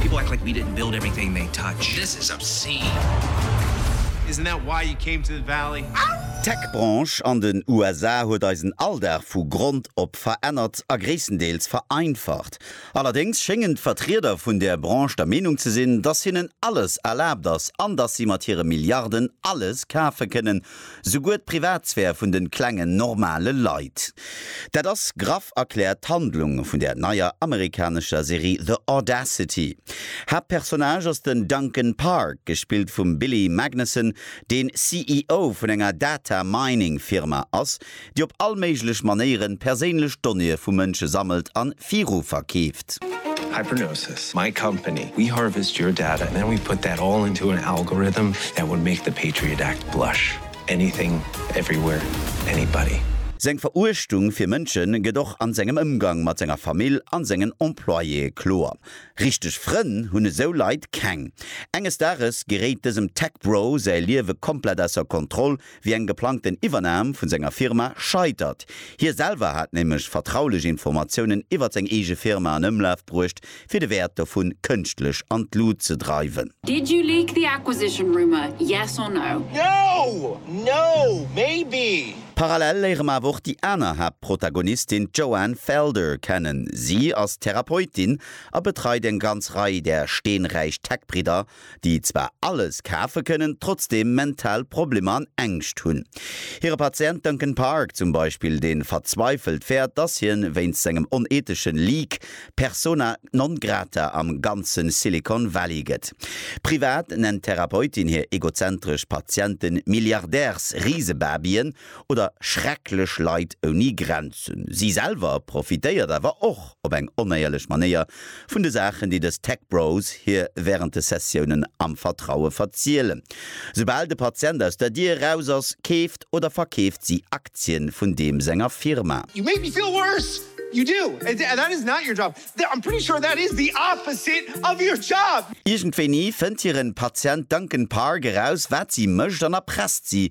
People act like we didn't build everything they touch. This is obscene. Isn't that why you came to the valley? D'Tech-Branche an den USA huet eisen Alldag vu Grond op verännert a gréisstendeels vereinfacht. Allerdéngs schéngen d'Vertrieder vun där Branche der Meenung ze sinn, dass hinnen alles erlaabt ass an dass si mat hire Milliarden alles kafe kënnen, Souguer d'Privatsphär vun de klengen, normale Leit. Dat ass graff erkläert d'Handlung vun der neier amerikanescher Serie The Audacity. Haaptpersonnage ass den Duncan Park, gespillt vum Billy Magnussen, deen CEO vun enger Data-Mining-Firma ass, déi op all méiglech Manéieren perséinlech Donnéeë vu Mënsche sammelt an viru verkeeft. Hypernosis, my company, we harvest your data and then we put that all into an algorithm that would make the Patriot Act blush. Anything, everywhere, anybody. Seng Veruechtung fir Mënsche gëtt och an sengem Ëmgang mat senger Famill an sengen Employéë kloer. Richteg Frënn hunn esou Leit keng. Enges Dages geréit dësem Tech Bro säi Liewe komplett ausser Kontroll, wéi eng geplangten Iwwernam vun senger Firma scheitert. Hie selwer hat nämlech vertraulech Informatiounen iwwert seng eege Firma an Ëmlaf bruecht, fir de Wäert dovun kënschtlech an d'Lut ze dreiwen. Did you leak the acquisition rumour, yes or no? No! No! Maybe! Parallel léiere mer awer och déi aner Haaptprotagonistin, d'Joanne Felder, kennen. Si ass Therapeutin a betreit eng ganz Rei där steenräich Tech-Bridder déi zwar alles kafe kënnen, trotzdeem mental Problemer an Ängscht hunn. Hire Patient Duncan Park zum Beispill, dee verzweifelt fäert, dass hien wéinst sengem oneethesche Leak persona non grata am ganze Silicon Valley gëtt. Privat nennt d'Therapeutin hir egozentresch Patiente Milliardärsrisebabyen, oder schrecklech Leit ouni Grenzen. Si selwer profitéiert awer och op eng onéierlech Manéier vun de Saachen, déi dës Tech Bros hir wärend de Sessiounen am Vertraue verzielen. Soubal de Patient aus der Dier eraus ass, keeft oder verkeeft si Aktien vun deem senger Firma. You make me feel worse, you do, that is not your job, I'm pretty sure that is the opposite of your job! Iergendwéini fënnt hiren Patient Duncan Park eraus, wat si mécht an erpresst si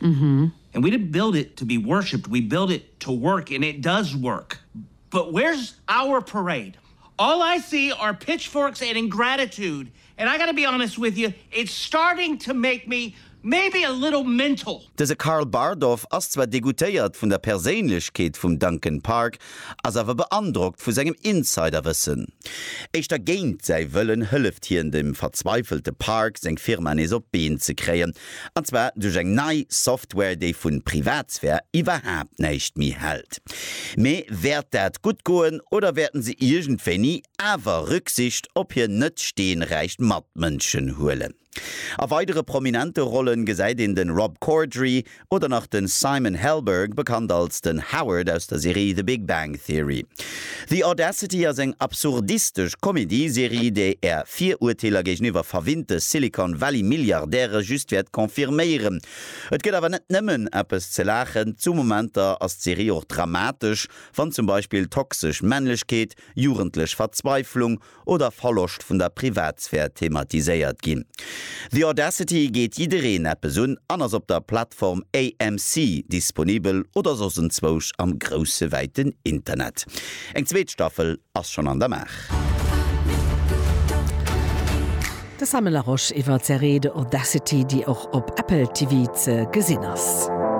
Mhm. And we didn't build it to be worshipped, we built it to work and it does work. But where's our parade? All I see are pitchforks and ingratitude and I gotta be honest with you, it's starting to make me maybe a little mental. Dëse Karl Bardorf ass zwar degoutéiert vun der Perséinlechkeet vum Duncan Park, ass awer beandrockt vu sengem Insiderwëssen. Éischter géint säi Wëllen hëlleft hien dem verzweifelte Park, seng Firma nees op d'Been ze kréien, An zwar duerch eng nei Software, déi vu Privatsphär iwwerhaapt näischt méi hält. Mee wäert dat gutt goen oder wäerten se iergendwéini awer Rücksicht op hir net steenräich Matmënschen huelen? A weidere prominente Rollen gesäit een de Rob Corddry oder nach de Simon Helberg, bekannt als den Howard aus der Serie The Big Bang Theory. The Audacity ass eng absurdistesch Comedyserie, déi Är Virurteeler géigeniwwer verwinnte Silicon Valley Milliardäre just wäert confirméieren. Et gëtt awer net nëmmen eppes ze laachen, zu Momenter ass d'Serie och dramatesch, wann zum Beispill toxesch Männlechkeet, jugendlech Verzweiflung oder Verloscht vun der Privatsphär thematiséiert ginn. The Audacity geet jiddereen eppes un an ass op der Plattform AMC disponibel oder soss enzwousch am grousse wäiten Internet. Eng zweet Staffel ass schonn an der Maach. De Samuel Laroche iwwer d'Serie The Audacity, déi och op Apple TV ze gesinn ass.